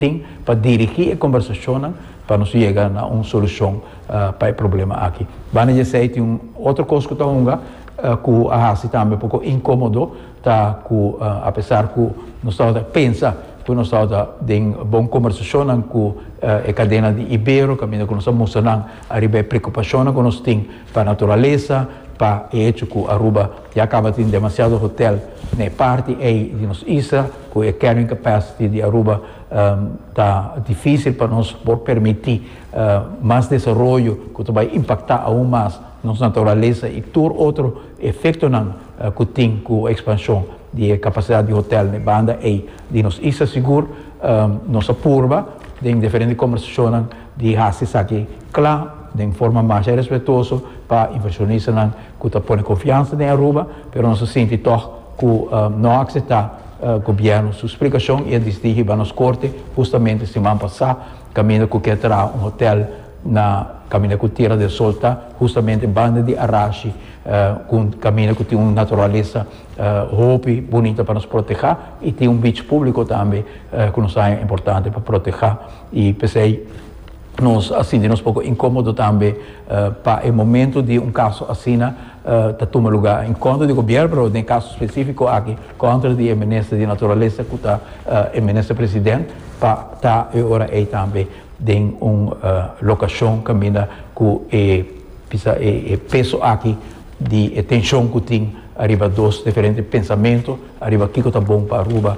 tin pa dirigí e kombersashonnan pa nos yega na un solushon pa e problema aki. Banda di esei tin un otro kos ku ta hunga ku a hasi tambe poko inkómodo, ta ku apesar ku nos tabata pensa ku nos tabata den bon kombersashonnan ku e kadena di Ibero kaminda ku nos a mustra nan ariba e preokupashonnan ku nos tin, Pa naturalesa, pa e echo cu Aruba ya caba tin demasiado hotel na e parti ey di nos isla, cu e carrying capacity di Aruba ta dificil pa nos por permiti mas desaroyo cu ta bay impacta aun mas nos naturalesa y tur otro efectonan cu tin cu expansion di e capacidad di hotel na e banda ey di nos isla. Sigur nos a purba den diferente conversacionnan. di hasi esaki cla den forma masha respetuoso pa inversionista cu ta pone confiansa den Aruba, pero nos a sinti tog cu no a acepta gobierno su splicacion y a disidi hiba nos corte hustamente siman pasa caminda cu kier traha un hotel na caminda cu Tierra del Sol ta, hustamente banda di Arashi, cu caminda cu tin un naturalesa hopi bunita pa nos proteha y tin un beach publico tambe cu nos a haña importante pa proteha. I p'esei nos a sinti nos poko inkomodo tambe pa e momento di un kaso asina ta tuma lugá en kontra di gobièrnu, pero den e kaso spesífiko aki kontra di e minister di Naturalesa ku ta e minister president pa ta e ora ei tambe den un lokashon kaminda ku e bisa e peso aki di e tenshon ku tin ariba dos diferente pensamentu ariba kiko ta bon pa Aruba.